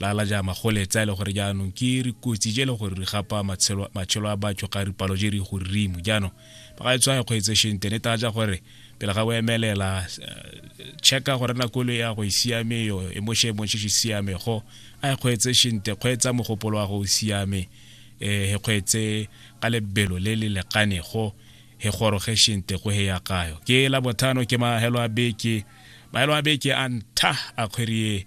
lala ja magole tsa ile e gore jaanong ke re kotsi je le gore re gapa matshelo matshelo a batho ga re palo je re go rimo jaanong ba ga e tswa go etse shente ne ta ja gore pele ga o emelela eh, checka gore na kolo ya go e siame yo e mo shemo se siame go a e kgwetse shente kgwetsa mogopolo wa go siame eh he kgwetse ka lebelo le le lekane go he goroge shente go he ya kayo ke la bothano ke mahelo a beke mahelo a beke a ntha a kgwerie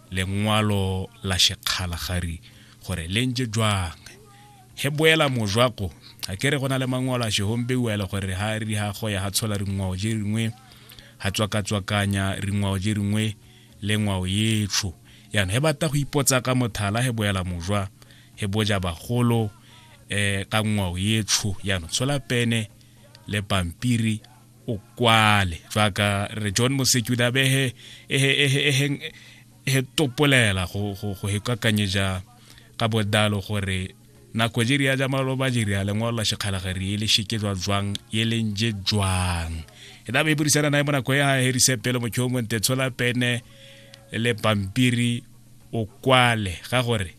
lengwalo la shekgala gari gore le ntse jwang he boela mojwako a kere go na le mangwalo a shehombeua e le gore ha ri ha go ya ha tshola ringwao je ringwe ha tswakatswakanya ringwao je ringwe le ngwao yetsho yana he bata go ipotsa ka mothala he boela mojwa he boja bagolo eh ka ngwao yetsho yana tshola pene le pampiri o kwale jaaka re john moseki o ne a be ehe ehe ehe ehe ehe topolela go go go hekakanyeja ka bodalo gore nako jiri ya jamalo ba jiri ya lengwalo la shekgala ga re ele sheke jwa jwang ye leng je jwang e da be burisana nae mo nako ya herise pele motho mo nte tshola pene le pampiri o kwale ga gore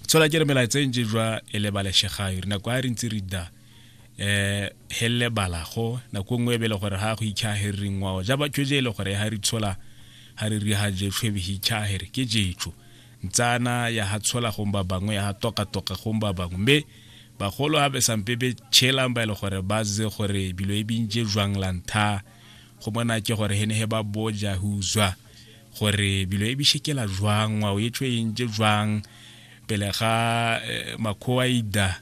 tshola ke re melaetseng je jwa ele ba le shegayo re nako a re ntse re da eh helele bala go nako e nngwe e be le gore ga go itšhagere ngwao ja batho je e le gore ga re tshola ga re ri ga je tlhwebe hi itšhagere ke jetso ntsana ya ga tshola gong ba bangwe ya ga toka-toka gong ba bangwe mme bagolo ga be sampe be tšhelang ba e le gore ba ze gore bilo e bintse jwang la ntha go mona ke gore hene he ba boja ho uzwa gore bilo e bishekela jwang ngwao e tshwe e ntse jwang pele ga eh, makhowa ida